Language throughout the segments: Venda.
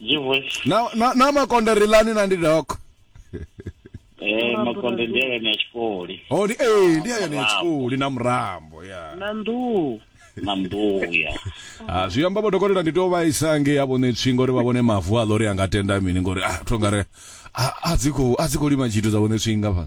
G voice. na na na makonde ri lani na ndi doko Eh makonde ndi yone ya tshikoli. oh ndi eh ndi yone ya tshikoli na murambo ya na nḓuhu Na mbuya. ah zwi amba vho dokotela ndi to vhaisa nge ya vhone tswi ngori vha vhone mavu a lori anga tenda mini ngori ah to ngare a a dzi kho a dzi kho lima tshithu dza vhone tswi ngafha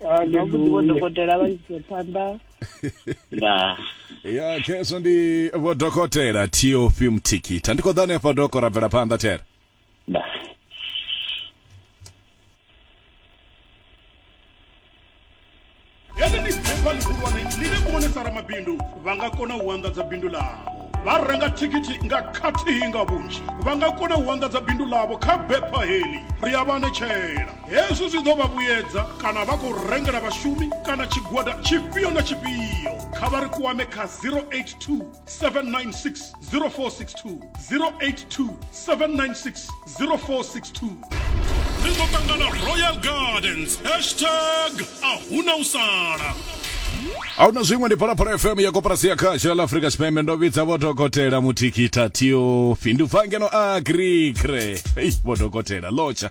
dokotela vha ise phanḓa ya khezwo ndi vho dokotela tof mthikitha ndi khou ḓa hanefha doko ra bvela phanḓa thera ramabindu vha nga kona u anḓadza bindu ḽavho vha renga thikhithi nga khathihi nga vhunzhi vha nga kona u anḓadza bindu ḽavho kha bepha heḽi ri a vha netshela Hezwi zwi ḓo vha vhuyedza kana vha khou rengela vhashumi kana tshigwada tshifhio na tshifhio. Kha vha ri kwame kha 082 796 0462, 082 796 0462. Ri ḓo ṱangana Royal Gardens, hashtag a huna u sala. a huna zwiṅwe ndi phalaphala fm ya koporasi ya khasha la afrika tshipembe ndo vhidza vho dokotela muthikitha tio findubva ngeno a agrikre ei vho dokotela lotsha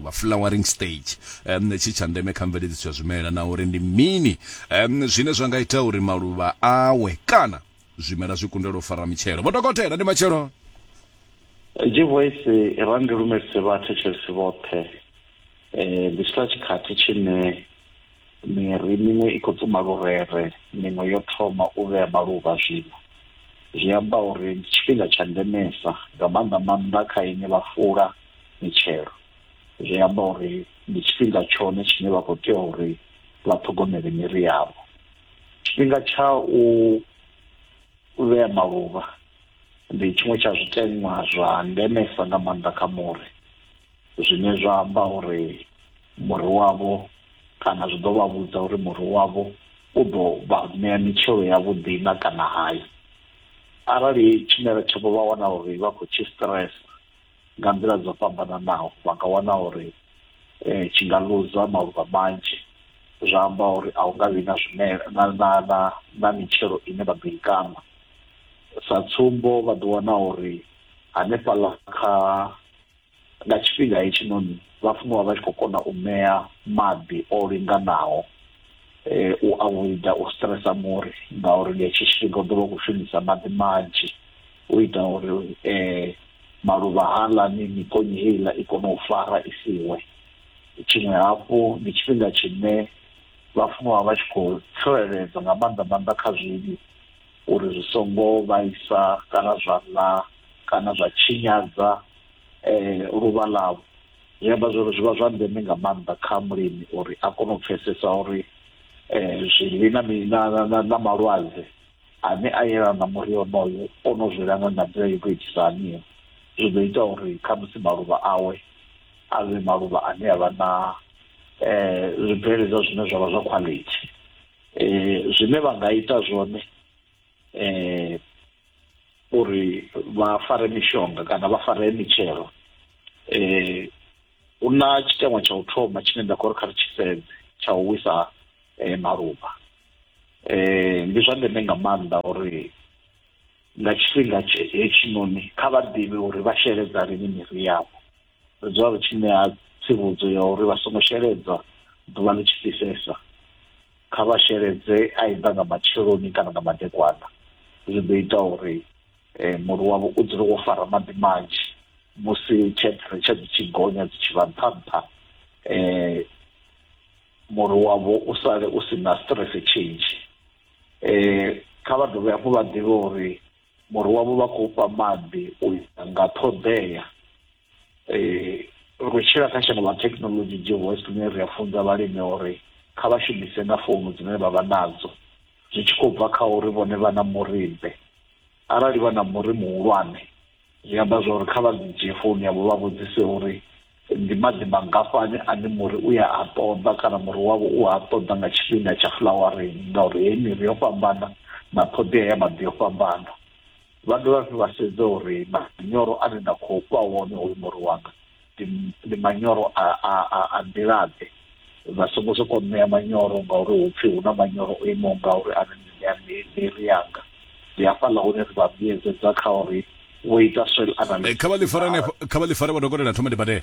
vha flowering stage um, tshi tsha ndeme kha mveledziso ya zwimela na uri ndi mini um, zwine zwa nga ita uri maluvha awe kana zwimela zwi kundelwa u fara mitshelo vho dokotela ndi matshelo jivoisi ra ndi lumelise vhathetshelesi vhoṱhe um ndi tshila tshikhathi tshine Miri miṅwe i khou tsuma lurere, miṅwe yo thoma u vhea maluvha zwino. Zwi amba uri ndi tshifhinga tsha ndemesa, nga maanḓa-maanḓa kha inwi vha fula mitshelo. Zwi amba uri ndi tshifhinga tshone tshine vha khou tea uri vha ṱhogomele miri yavho. Tshifhinga tsha u vhea maluvha ndi tshiṅwe tsha zwiteṅwa zwa ndemesa nga maanḓa kha muri, zwine zwa amba uri. muri wavho kana zwi ḓo vha vhudza uri muri wavho u ḓo vha ṋea mitshelo ya vhuḓi na kana hai arali tshimela tshavho vha wana uri vha khou tshi stress nga nḓila dzo fhambananaho vha nga wana uri eh, tshi nga luza maluvha manzhi zwa amba uri a hu nga vhi na zwimela na na na na mitshelo ine vha ḓo i kaṋa sa tsumbo vha ḓo wana uri hanefhaḽa kha Nga tshifhinga hetshinoni, vhafunwa vha tshi khou kona u ṋea maḓi o linganaho u avoida u stresa muri ngauri nga hetshi tshifhinga u ḓo vha u khou shumisa maḓi manzhi u ita uri maluvha haaḽani, mikonye heiḽa i kone u fara i si we. Tshiṅwe hafhu, ndi tshifhinga tshine vhafunwa vha tshi khou tsireledzwa nga maanḓa maanḓa kha zwivhi uri zwi songo vhaisa kana zwa ḽa kana zwa tshinyadza eh luvha ḽavho zwi amba zwori zwi vha zwa ndeme nga maanḓa kha mulimi uri a kone u pfesesa uri eh zwivhi na na na malwadze ane a yelana na muri onoyo o no zwi langa nga nḓila yo tou itisa haniyo zwi ḓo ita uri kha musi maluvha awe a vhe maluvha ane a vha na eh zwibveledzwa zwine zwavha zwa quality eh zwine vha nga ita zwone eh uri vha fare mishonga kana vha fare mitshelo eh hu na tshiteṅwa tsha u thoma tshine nda khou ri kha ri tshi sedze tsha u wisa eh, maluvha eh ndi zwa ndeme nga maanḓa uri nga tshifhinga hetshinoni kha vha ḓivhe uri vha sheledza lini miri yavho ri dzula ri tshi ṋea tsivhudzo ya uri vha songo sheledzwa ḓuvha ḽi tshi fhisesa Kha vha sheledze aidha nga matsheloni kana nga madekwana. Zwi ḓo ita uri muri wavho u dzule wo fara maḓi manzhi musi temperature dzi tshi gonya dzi tshi vha nṱha nṱha, muri wavho u sale u si na stress tshinzhi. Kha vha dovhe hafhu vha ḓivhe uri muri wavho vha khou fha maḓi u ya nga ṱhoḓea eh, ri tshila kha shango ḽa thekhinolodzhi dzi host ḽine ri a funza vhalimi uri kha vha shumise na founu dzine vha vha nadzo zwi tshi khou bva kha uri vhone vha na murimbe arali vha na muri muhulwane zwi amba zwa uri kha vha dzi dzhie founu yavho vha vhudzise uri ndi maḓi mangafhani ane muri u ya a ṱoḓa kana muri wavho u a ṱoḓa nga tshifhinga tsha flowering ngauri heyi miri yo fhambana na ṱhoḓea ya maḓi yo fhambana Vha dovha hafhu vha sedza uri manyoro ane nda khou fha wone hoyu muri wanga ndi manyoro a a a a nḓilaḓe vha songo sokou ṋea manyoro ngauri hu pfhi hu na manyoro o imaho ngauri ane ndi ṋea miri yanga ndi hafhaḽa hune ri vha vhuyedzedza kha uri vho ita soil eh, analysis kha vha ḽi fare hanefho kha vha ḽi fare vha dokotela thoma ndi badele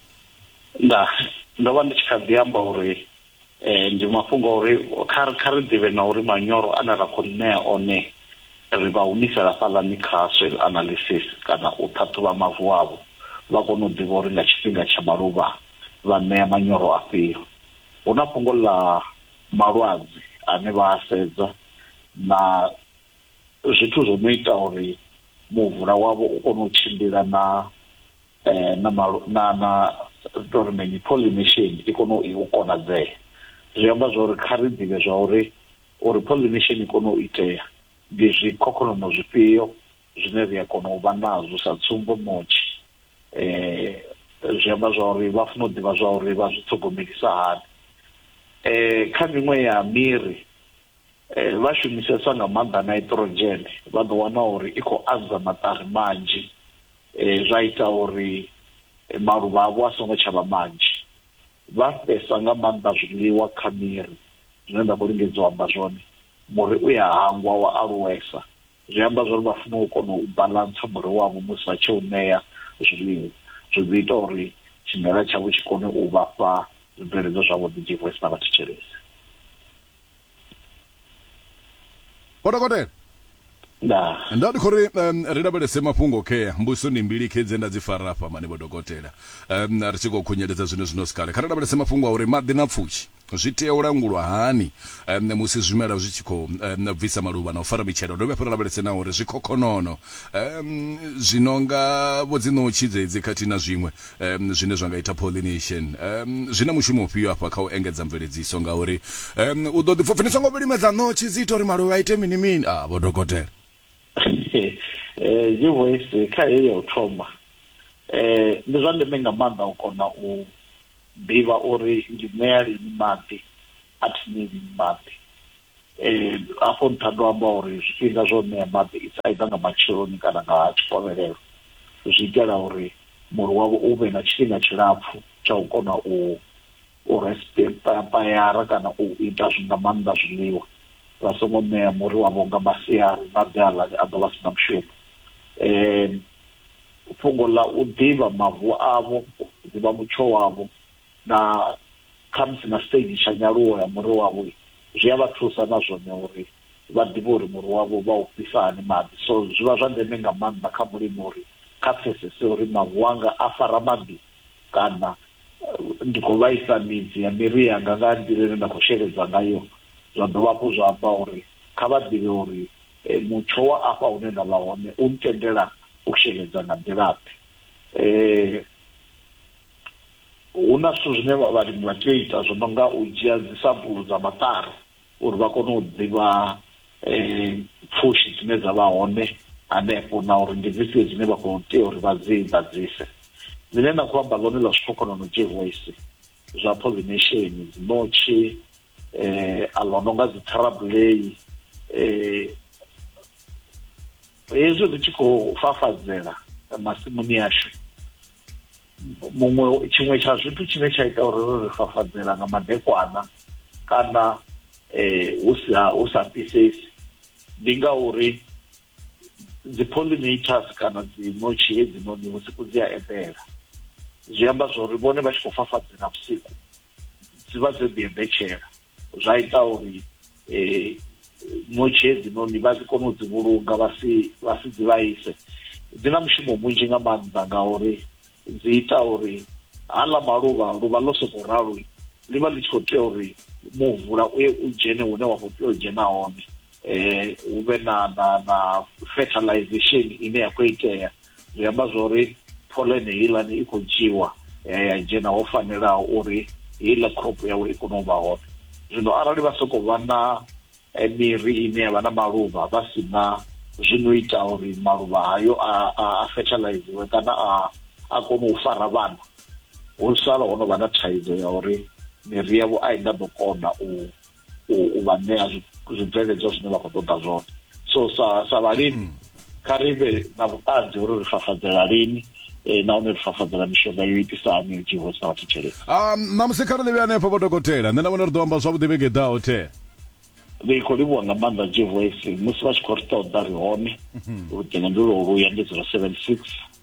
nda ndo vha ndi tshi kha ḓi amba uri eh, ndi mafhungo a uri kha kha ri ḓivhe na uri manyoro ane ra khou ṋea one ri vha humisela fhaḽani kha soil analysis kana u ṱhaṱhuvha mavu avho vha kone u ḓivha uri nga tshifhinga tsha maluvha vha ṋea manyoro afhio hu na fhungo ḽa malwadze ane vha a sedza na zwithu zwo no ita uri muvula wavho u kone u tshimbila na eh, na na na tori mini pollination i kone u konadzea zwi amba zwa uri kha ri ḓivhe zwa uri uri pollination i kone u itea ndi zwikhokhonono zwifhio zwine ri a kona u vha nazwo sa tsumbo motshi eh zwi amba zwa uri vha funa u ḓivha zwa uri vha zwi ṱhogomelisa hani eh kha miṅwe ya miri eh vha shumisesa nga maanḓa nitrogen vha ḓo wana uri i khou anza maṱari manzhi eh, zwa ita uri eh, maluvha avho a songo tshavha manzhi vha fhesa nga maanḓa zwiḽiwa kha miri zwine nda khou lingedza u amba zwone muri u ya hangwa wa aluwesa zwi amba zwa uri vha funa u kona u balansa muri wavho musi vha tshi u ṋea zwiḽiwa zwi ḓi ita uri tshimela tshavho tshi kone u vhafha zwibveledzwa zwavhuḓi dzivhesi na vhathetshelesi Vho dokotela. Ndaa. Nda ndi khou ri um, ri lavhelese mafhungo khea mbuso ndi mbili khe dze nda dzi fara afha mani vho dokotela. Um, ri tshi khou khunyeledza zwine zwino si kale. Kha ri lavhelese mafhungo a uri maḓi na pfushi zwi tea u langulwa hani um, musi zwimela zwi tshi khou um, bvisa maluvha na u fara mitshelo. Dovhe hafhu ri lavhelese na uri zwikhokhonono um, zwi no nga vho dzinotshi dzedzi khathihi na zwiṅwe um, zwine zwa nga ita pollination um, zwi na mushumo ufhio afha kha u engedza mveledziso ngauri um, u ḓo ḓipfa pfhi songo vhilimedza ṋotshi dzi ita uri maluvha ite mini mini a ah, vho dokotela eh, voice kha heyi ya u thoma um ndi zwa ndeme nga maanḓa u kona u ḓivha uri ndi ṋea lini maḓi a thi ṋei lini maḓi eh afho nṱha ndo amba uri zwifhinga zwo ṋea maḓi it's either nga matsheloni kana nga tshikovhelelo zwi itela uri muri wavho u vhe na tshifhinga tshilapfu tsha u kona u u respayara kana u ita zwi nga maanḓa zwiḽiwa vha songo ṋea muri wavho nga masiari maḓi aḽa a ḓo vha si na mushumo um fhungo ḽa u ḓivha mavu avho ḓivha mutsho wavho na khamusi na stage tsha nyaluwo ya muri wavho zwi a vha thusa na zwone uri vha ḓivhe uri muri wavho vha u fhisa hani maḓi so zwi vha zwa ndeme nga maanḓa kha mulimi uri kha pfesese uri mavu anga a fara maḓi kana ndi khou vhaisa midzi ya miri yanga nga nḓila ine nda khou sheledza ngayo zwa dovha hafhu zwa amba uri kha vha ḓivhe uri mutsho wa afha hune nda vha hone u ntendela u sheledza nga nḓilaḓe um hu na zwithu zwine vhalimi vha tea u ita zwo no nga u dzhia dzi sampulu dza maṱari uri vha kone u ḓivha um pfushi dzine dza vha hone hanefho na uri ndi dzifhio dzine vha khou tea uri vha dzi ḓadzise ḽine na khou amba ḽone ḽa zwikhokhonono jehoisi zwa pollination dzi notshi um a ḽo no nga dzi tharabulei um hezwi ri tshi khou fafadzela masimuni ashu muṅwe tshiṅwe tsha zwithu tshine tsha ita uri ri ri fafadzela nga madekwana kana um hu sa hu sa fhisesi ndi ngauri dzi pollinators kana dzi notshi hedzinoni vhusiku dzi a eḓela zwi amba zwori vhone vha tshi khou fafadzela vhusiku dzi vha dzo ḓi eḓetshela zwa ita uri um ṋotshi hedzinoni vha si kone u dzi vhulunga vha si vha si dzi vhaise dzi na mushumo munzhi nga maanḓa ngauri dzi ita uri haḽa maluvha luvha ḽo sokou ralo ḽi vha ḽi tshi khou tea uri muvula u ye u dzhene hune wa khou tea u dzhena hone um hu vhe na na na fertilization ine ya khou itea zwi amba zwori pholene heiḽani i khou dzhiwa ya ya dzhena ho fanelaho uri heiḽa crop yawe i kone u vha hone zwino arali vha sokou vha na eh, miri ine ya vha na maluvha vha si na zwino ita uri maluvha hayo a, a, a fertiliziwe kana a, a kone u fara vhana hu sala ho no vha na thaidzo ya uri miri yavho a i nga ḓo kona u u vha ṋea zwibveledzwa zwine vha khou ṱoḓa zwone so sa sa vhalimi hmm. kha ri vhe na vhuṱanzi uri ri fafadzela lini eh, nahone ri fafadzela mishonga yo itisa hani yo dzhiiho sa vhathu tshelede ah, ṋamusi kha ri ḽivhe hanefho vho dokotela nṋe na vhone ri ḓo amba zwavhuḓi vhege i ḓaho the ri khou livhuwa nga maanḓa jevoisi musi vha tshi khou ri ṱoḓa ri hone mhm. luṱingo ndi lwo luya ndi zero seven six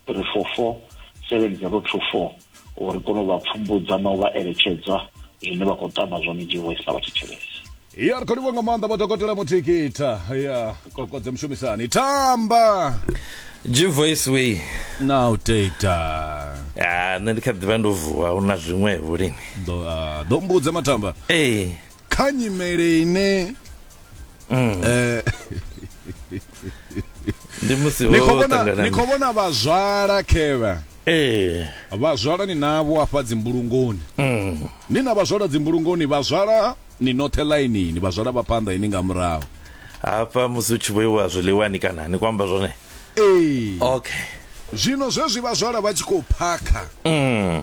347224 uri kone u vha pfumbudza na u vha eletshedza zwine vha khou tama zwone jehoisi na vhathetshelesi ya ri khou livha nga maanḓa vhadokotela muthikitha ya kokodze mushumisani tamba G-Voice way na u teta ah, nṋe ndi kha ḓivha ndo vuwa hu na zwiṅwevho lini ḓo ah, mbudze matamba ee kha nyimele ine mm. eh ndi musi ni khou vhona ni khou vhona vhazwala khevha ee vhazwala ni navho afha dzimbulungoni mm. ni na vhazwala dzimbulungoni vhazwala ni noṱhe ḽainini vhazwala vha phanḓa ini nga murahu hafha musi u tshi vhoiwa zwiḽiwani kana ni kwamba zwone ee okay zwino zwezwi vhazwala vha tshi khou phakha mm.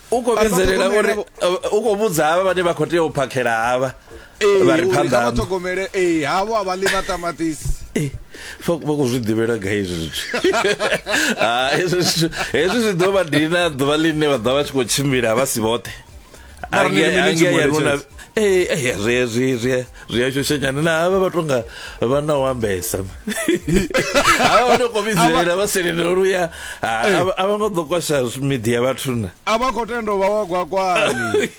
u khou vhidzelela uri u khou vhudza havha vhane vha khou tea u phakhela havha vha ri phanḓa ṱhogomele ee havho a vha ḽi maṱamaṱisi vha khou zwi ḓivhela ga hezwi zwithu hezwi zwithu hezwi zwi ḓo vha dina ḓuvha ḽine vha ḓa vha tshi khou tshimbila vha si vhoṱhe angea ya nuna ee zwi zwi zwi ri a shoshanyana na havha vha tonga vha na u ambesa havha vha to komidzela vha selendela uri uya a vha ngo ḓo kwasha miḓi ya vhathuna a vha khou tenda vha wa gwakwani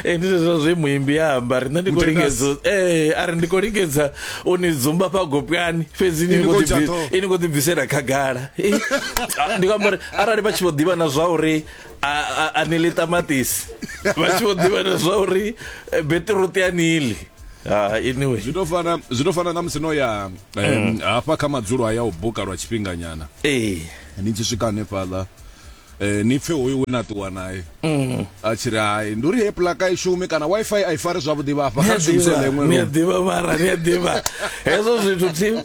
e ndi zwezwo zwe muimbi ya amba ri nṋe ndi khou lingedza ee a ri ndi khou lingedza u ni dzumba fha gopwani fhedzi ini khou ḓibvisela khagala ndi khou amba uri arali vha tshi vho ḓivha na zwa uri a ni ḽi ṱamaṱisi vha tshi vho ḓivha na zwa uri eh, beṱiruṱi a ni ḽi Ah, anyway zwi to fana zwi to fana na musi no ya mm. hafha kha madzulo aya u buka lwa tshifhinganyana ee ni tshi swika hanefhaḽa eh ni pfe hoyo we na ṱuwa naye mm. a tshi ri hai ndi uri he plaka i shume kana wifi a i fari zwavhuḓi vhafha kha shumise ḽeṅwe ni a ḓivha mara ni a ḓivha hezwo zwithu tim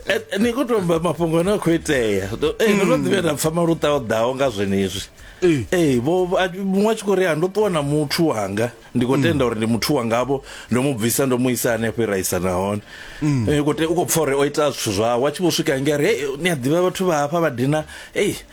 Eh, eh, ni khou tou amba mafhungo ane a khou itea ndo eh, ndo no ḓivhe nda pfa maluṱa o ḓaho nga zwenezwi Ee. ee vho vho- a- muṅwe a tshi khou ri a ndo ṱuwa na muthu wanga ndi khou tenda uri ndi muthu wangavho ndo mu bvisa ndo mu isa hanefho iraisa nahone Eh, u khou te- u khou pfa uri o ita zwithu zwawe a tshi vho swika nge a ri "Hey, ni a ḓivha vhathu vha hafha vha dina ei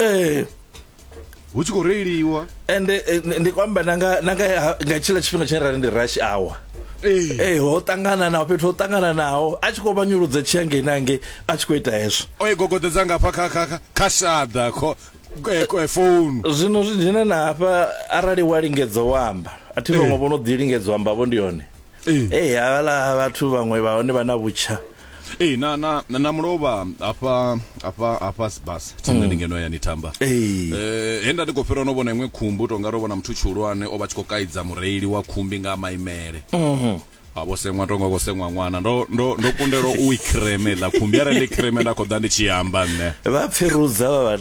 ee hu tshi khou reiliwa ende eh, ndi- ndi khou amba na nga na nga ha- nga tshiḽa tshifhinga tshine ra ri ndi rush hour ee ee ho ṱangana naho fhethu ho ṱangana naho a tshi khou vha nyuludza tshi hangei na hangei a tshi khou ita hezwo o i gogodedza ngafha kha kha kha- kha shaḓa kho eh, ko- eh, founu zwino zwi dzhena na hafha arali wa lingedza u amba a thi vhaṅwe vho no ḓi lingedza u amba vho ndi hone ee ee havhala vhathu vhaṅwe vha hone vha na vhutsha ee na na na mulovha hafha hafha hafha sibas tsini ndi ngeno ya ni tamba ee Eh, he nda ndi khou fhira no vhona iṅwe khumbu tonga ro vhona muthu tshihulwane o vha tshi khou kaidza mureili wa khumbi nga maimele a vho seṅwa tonga khou seṅwa ṅwana ndo ndo ndo kundelwa u i creme ḽa khumbi arali ndi creme nda khou ḓa ndi tshi amba nṋe vha pfirudza vha vha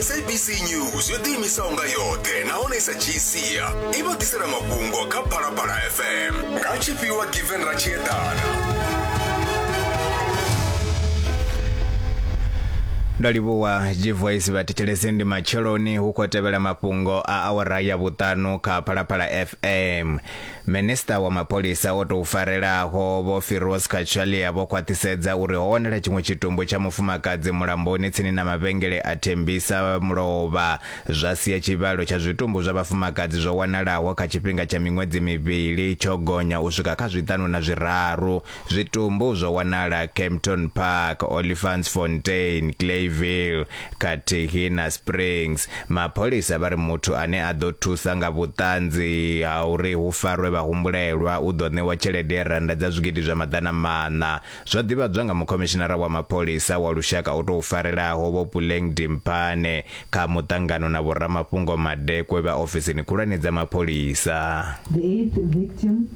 sabc news yo ḓiimisaho nga yoṱhe nahone i sa dzhii sia i vha ḓisela mafhungo kha phalaphala fm nga tshifhiwa given ratshiedana ndo livhuwa gvoice vha thetshelese ndi matsheloni hu khou tevhela mafhungo a awara ya vhuṱanu kha phalaphala fm Minisiṱa wa mapholisa o tou farelaho Vho Firoz Cachalia vho khwaṱhisedza uri ho wanala tshiṅwe tshitumbu tsha mufumakadzi mulamboni tsini na mavhengele a Thembisa Mulovha zwa sia tshivhalo tsha zwitumbu zwa vhafumakadzi zwo wanalaho kha tshifhinga tsha miṅwedzi mivhili tsho gonya u swika kha zwiṱanu na zwiraru. Zwitumbu zwo wanala Kempton Park, Olifantsfontein, Clayville khathihi na Springs. Mapholisa vha ri muthu ane a ḓo thusa nga vhuṱanzi ha uri hu farwe vhahumbulelwa u ḓo ṋewa tshelede ya rannda dza zwigidi zwa maḓana maṋa. Zwo ḓivhadzwa nga mukhomishinara wa mapholisa wa lushaka o tou farelaho Vho Puleng Dimpane kha muṱangano na vhoramafhungo madekwe vha ofisini khulwane dza mapholisa. The eighth victim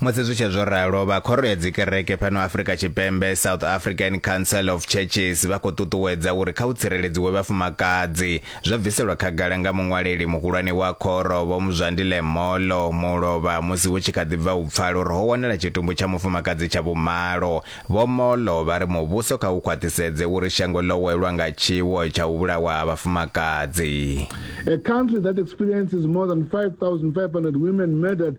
Musi zwi tshe zwo ralo, vha Khoro ya Dzikereke fhano Afrika Tshipembe, South African Council of Churches, vha khou ṱuṱuwedza uri kha hu tsireledziwe vhafumakadzi. Zwo bviselwa khagala nga muṅwaleli muhulwane wa khoro, Vho Mzwandile Molo, Mulovha, musi hu tshi kha ḓi bva u pfala uri ho wanala tshitumbu tsha mufumakadzi tsha vhumalo. Vho Molo vha ri muvhuso kha u khwaṱhisedze uri shango ḽo welwa nga tshiwo tsha u vhulawa ha vhafumakadzi. A country that experiences more than 5,500 women murdered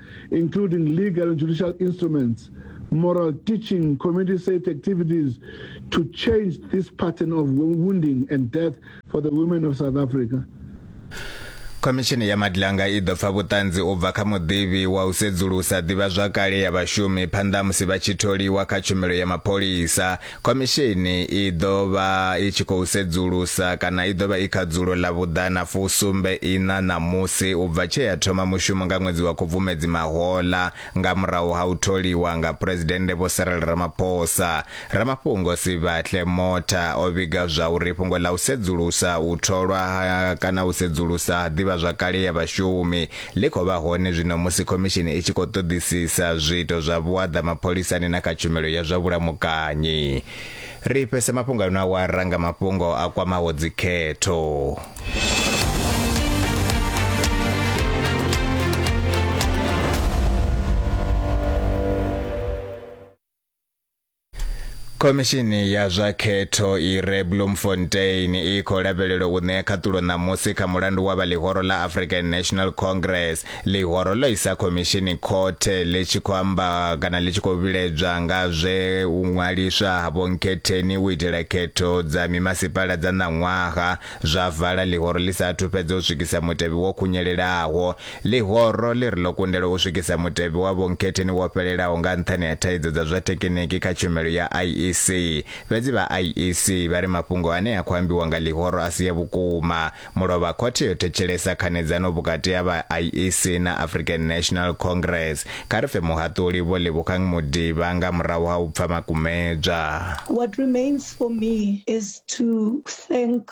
including legal and judicial instruments, moral teaching, community safe activities to change this pattern of wounding and death for the women of South Africa. khomishini ya madlanga i ḓo pfa vhuṱanzi u bva kha muḓivhi wa u sedzulusa ḓivhazwakale ya vhashumi phanḓa musi vha tshi tholiwa kha tshumelo ya mapholisa Khomishini i ḓo vha i tshi khou sedzulusa kana i ḓo vha i kha dzulo ḽa vhuḓana fusumbe iṋa ṋamusi u bva tshe ya thoma mushumo nga ṅwedzi wa Khubvumedzi mahoḽa nga murahu ha u tholiwa nga Phresidennde Vho Cyril Ramaphosa. Ramafhungo Sibahle Motha o vhiga zwa uri fhungo ḽa u sedzulusa u tholwa ha kana u sedzulusa ha ḓivhazwakale ya vhashumi ḽi khou vha hone zwino musi khomishini i tshi khou ṱoḓisisa zwiito zwa vhuaḓa mapholisani na kha tshumelo ya zwa vhulamukanyi. Ri fhese mafhungo ano awara nga mafhungo a kwamaho dzikhetho. khomishini ya zwa khetho i re bloemfontein i khou lavhelelwa u ṋea khaṱulo ṋamusi kha mulandu wa vha ḽihoro ḽa african national congress ḽihoro ḽo isa khomishini khothe ḽi tshi khou amba kana ḽi tshi khou vhiledzwa nga zwe u ṅwaliswa ha vhonkhetheni u itela khetho dza mimasipala dza ṋaṅwaha zwa vala ḽihoro ḽi sa athu fhedza u swikisa mutevhe wo khunyelelaho Ḽihoro ḽi ri ḽo kundelwa u swikisa mutevhe wa vhonkhetheni wo fhelelaho nga nṱhani ha thaidzo dza zwa thekiniki kha tshumelo ya IEC. Fhedzi vha IEC vha ri mafhungo ane a khou ambiwa nga ḽihoro a si a vhukuma. Mulovha khothe yo thetshelesa khanedzano vhukati ha vha IEC na African National Congress kha ri pfe muhaṱuli Vho Lebogang Modiba nga murahu ha u pfa makumedzwa. What remains for me is to thank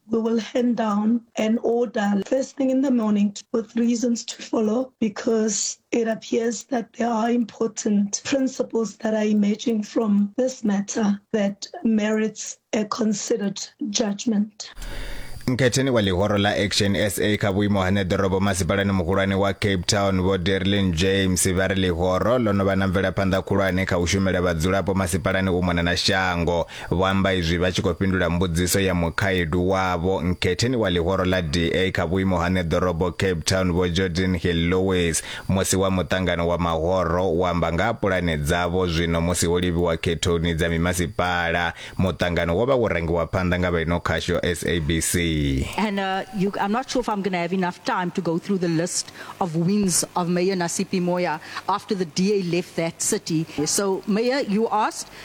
we will hand down an order first thing in the morning with reasons to follow because it appears that there are important principles that are emerging from this matter that merits a considered judgment. Nketheni wa lihoro la Action SA kha vhuimo hane ḓorobo masipalani muhulwane wa Cape Town vho Derlin James vha ri lihoro ḽo no vha na mvelaphanḓa khulwane kha u shumela vhadzulapo masipalani u mona na shango Vho amba izwi vha tshi khou fhindula mbudziso ya mukhaedu wavho nkhetheni wa ḽihoro ḽa DA kha vhuimo ha ṋeḓorobo Cape Town Vho Jordan Hill Lewis musi wa muṱangano wa mahoro u amba nga ha pulane dzavho zwino musi ho livhiwa khethoni dza mimasipala. Muṱangano wo vha wo rangiwa phanḓa nga vha ino khasho SABC. And uh, you, I'm not sure if I'm going to have enough time to go through the list of wins of Mayor Nasipi Moya after the DA left that city. So, Mayor, you asked,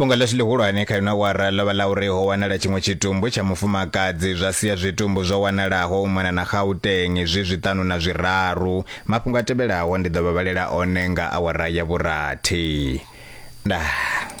fhungo ḽashu ḽihulwane kha ino wara ḽo vha ḽa uri ho wanala tshiṅwe tshitumbu tsha mufumakadzi zwa sia zwitumbu zwo wanalaho u mona na gauteng zwi zwiṱanu na zwiraru mafhungo a tevhelaho ndi ḓo vha vhalela one nga awara ya vhurathi ndaa